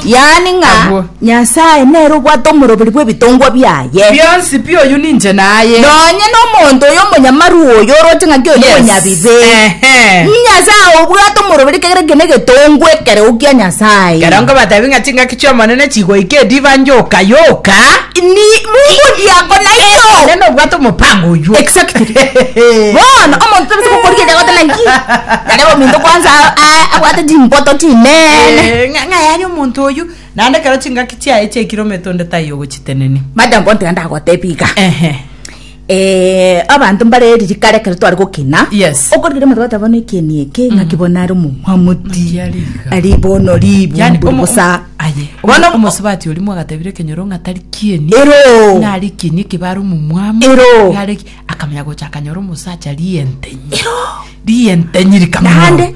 Yaani ng'a Agwo. Nyasae nere obwate omoroberi bw'ebitongwa biaye. Bionsi pi oyio ninche naye. Nonye nomonto oyo omonyamaru oyo oroche ng'a kio Yes. nomonyabibe. Ehe. Nyasae obwate omoroberi kegere kene egetongwa ekereo kia Nyasae. Kero nkobatebi ng'a chingaki chi'Omonene chigoika ediba nyoka yoka. Ni Mungu ndiye ako nayo. Omonene obwate omopango oyio. Exactly. Bono omonto tabisa gokora ekiagoteba naki. Nare ominto kwanza a- a- abwate Chimboto chinene. Eh, ng'a- ng'ai aye omonto oyu naende ekero chingaki chiaye chiaikire omete onde taiyo ogochitenenia Mada mbontera ndagotebia iga. ehe Eh, abanto mbare eriri kare ekero tware gokina. Yes. Okorigera omotwe goteba bono ekeni eke ng'aki bono are omomwamuti. Mbuya riga. Ari bono ribu yani mburu omo- bosa. aye Bono omo- omosubati ori mwagatebire ekenyoro ng'a tari kieni Ero. nari kieni ekebare omomwamu Ero. Nare ki- akamenya gocha akanyora omosacha rientenyi rientenyi rikamwao Naende.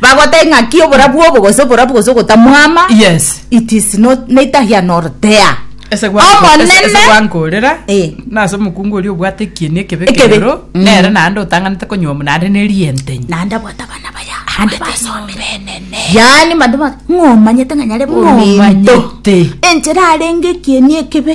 bagotebia ng'aki oborabu obo gose oborabu gose ogotamwama yes it is not neither here nor there ese gwa- ese- ese omonene gwankorera Eh. nase omokungu oria obwate ekieni ekebe Ekebe. ekerero Mm. nere naende otanganete konywa omo naende ne rientenyi naende abwate abana baya ande basomire yaani mande ba- ng'omanyete ng'a nyare bominto Ng'omanyete. enchera arenge ekieni ekebe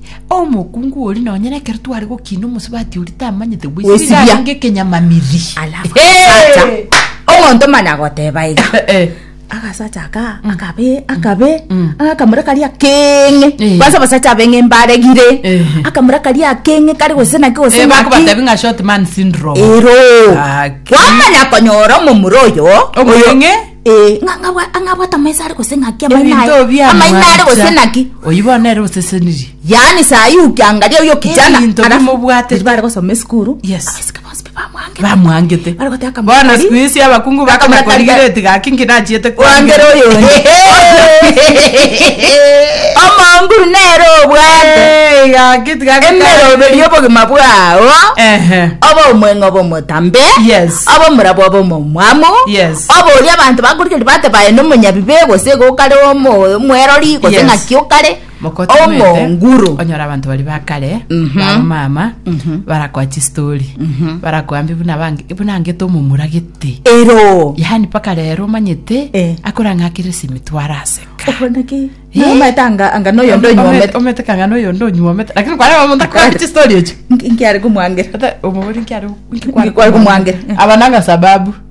Omokungu oria nonye nekero tware gokina omosubati oria tamanyete Gwesibia. gwesibia garenge ekenyamamiri alafu agasacha omonto mani agoteba iga Eh. agasacha aka akabe akabe Mm. akamura karia keng'e Eh. kwanza abasacha abeng'e mbaregire Eh. akamura karia keng'e kari gose naki gose Eh, naki bakobatebi ng'a short man syndrome ero Haki. kwamanya konyora omomura oyo Omong'e. Ee, ng'a ng'abwa- ng'a ng'abwate amaiso are gose ng'aki amaino Ebinto aye. bia Amaino are gose mwancha, ng'aki. oyio bono ere osesenirie. Yaani saa hii ukiangalia huyo kijana Ebinto alafu- bimobwatete. Bari gosoma esukuru Yes. abasika bonsi pi bamwangete. Bamwangete. Bari goteba kama Bono kori- siku hizi abakungu baka Kama kori- makorigireti gaki nkinachiete kwangera oyo omonguru nere obwate gaki tigaki emeroberi obogima bwao Ehe. oba omweng'oba omotambe Yes. oba omorabwo oba omomwamu Yes. Oborie abanto bakorigereria bateba aye nomonyabibe, gose iga okare omwerori, gose Yes. ng'aki okare Mokotomete, omonguru. onyore abanto baria ba kare Mhm. bamama Mhm. barakoa chistori Mhm. barakoa mbi buna bange- buna angete omomura gete Ero. yaani mpaka rero omanyete Eh. akorang'akire simitwaro aseka Okoneki. Eh. Nomaete anga anga noyo ndo nyomete. omete kang'ana oyo ndo onywomete lakini kwareba omonto akoa chistori echo Nkiare komwangera. Ata omogori nkiare Nkikware komwangera. abananga sababu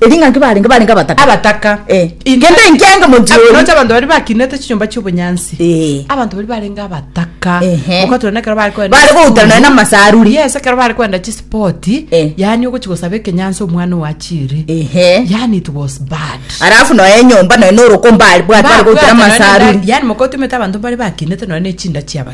Eri ng'a nki barenge? Barenge abataka. Abataka. Eh. Inche. Kende inki enge monchie Ab- oria? Nocha abanto bari bakinete chinyomba chi'obonyansi. Eh. Abanto bari barenge abataka. Ehe. Mokatura nekero bari koenda Bari esukuru. goutana nonya n'amasaruri. Yes, ekero bari koenda chisipoti. Eh. Yaani ogochi gosaba ekenyansi omwana owachire. Ehe. Yaani it was bad. Alafu noe enyomba noe noroko mbari bwate bari goutana Babwatana nenda- amasaruri. Yaani mokotumete abanto bari bakinete nonya nechinda chiaba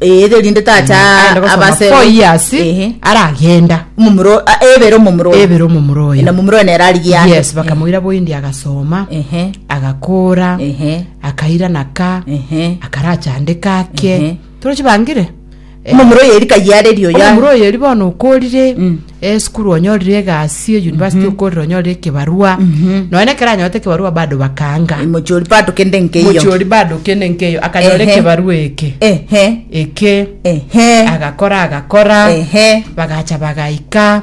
Eh, erinde tacha Aende gosoma abase four years Ehe. aragenda Omomura- ah, ebere omomura oyo. ebere omomura oyo na omomura oyo nere arigia yes bakamoira boindi agasoma ehe agakora ehe akaira naka ehe akarachandeka ake Ehe. torochi bangire Eh, omomura oyo erika yiareri oyo omomura oyo eri bono okorire Mm. esukuru onyorire egasi eyunivasiti okorire onyorire ekebarua nonya ekero anyorete ekebarua bado bakaanga mochori pato kende nkeiyo mochiori bado kende nkeyo akanyora Ehe. ekebarua eke ehe eke ehe agakora agakora ehe bagacha bagaika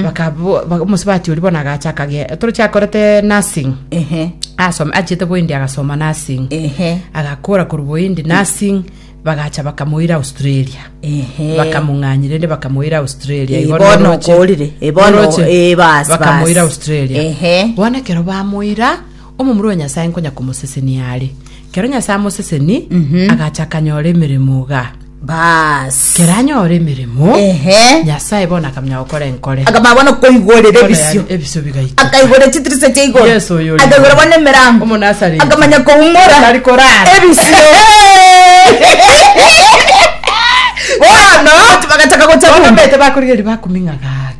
bakabo- ba- omosubati oria bono agacha akagenda torochi akorete nursing ehe asome achete boindi agasoma nursing ehe agakora korwa boindi nursing Bagacha bakamoira Australia. Ehe. Bakamong'anyia rende bakamoira Australia. Eh, Igo bono noroche- okorire. Eh, bono- noroche. eh, bas, Bakamoira bas. Australia. Ehe. Bono ekero bamoira, omomura o Nyasae nkonya komosesenia are. Kero Nyasae amoseseni, agacha akanyora emeremo iga. Bas. Kero anyora emeremo, Mo, Ehe. Nyasae bono akamenya gokora enkore. akamanya bono koigorera Enkore ebisio ya- ebisio bigaiteka. akaigorera chitirisa chia igoro Yesu oyo ore akaigorera igoro. bono emerango Omonasareti. akamanya koumora Atari korara. ebisio bono bagataka gocha Bono bumba. omanyete bakorigereria bakuming'a gare.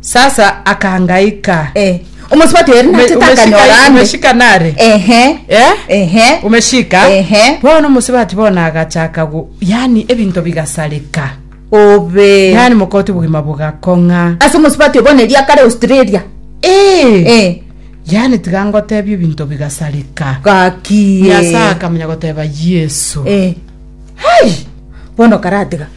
Sasa akangaika. Eh. Omosubati oyo Ume- nachete umeshika- akanyora ande. umeshika nare Ehe. Eh? Ehe. umeshika Ehe. bono omusibati bono agachaka gu yani ebinto bigasareka Obe. yani mokoti obogima bogakong'a Ase omosubati oyo bono eria kare Australia. Eh, Eh. yani tiga ngotebia ebinto bigasareka Gaki. nyasaye akamenya goteba yesu Eh. Hai! Bono karatiga.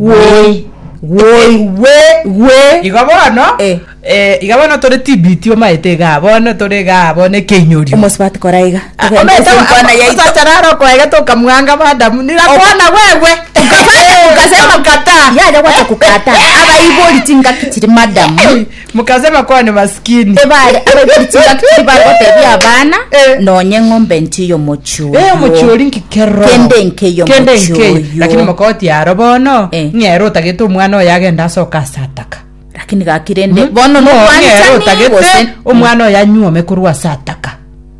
Woi. Woi, we, we. Igo bono, Eh. eh, iga bono tore tibiti omaete igaa, bono tore igaa, bono ekeinyorio. omosubati kora iga Ah, togende omaete ase enkwana omo- yaito osacha naro okoegete okamwanga madamu, nirakwana wewe. Ukasema- Ukakataa. yaja gwata kukata abaibori chingaki chiri madamu Mokaase bakwane masikini. Ebaare abeguri chingaki tibagotebia abana, Eh. Nonya eng'ombe enche y'omochie oyo. Eh, omochie oria inki kero. Kende enke y'omochie Kende enke oyo. oyo. Lakini mokagotia aro bono, Eh. ng'ere otagete omwana oyo agende ase okasataka. Lakini gaki rende bono Ng'o- ng'ere nokwanchani otagete gose omwana oyo anyuome korwa ase ataka.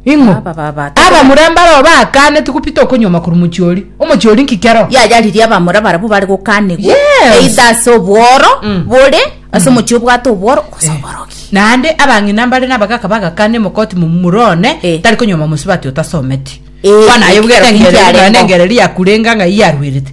Ing'o? Aba baba, tokora- Abamura mbarao bakaaneti gopita okonyuoma korwa omochie oria. Omochie oria nki kero? yayaririe abamura barabwo bare gokanigwa Yes. either ase obworo Mm. bore ase omochie obwate obworo gose oborogi naende abang'ina mbare nabagaka bagakana emokoti momura one Eh. tari konyuoma mosubati otasometi Eh, bono aye ekero bwegete kingiarengeo. engereri yakurenga ng'a iye arwerete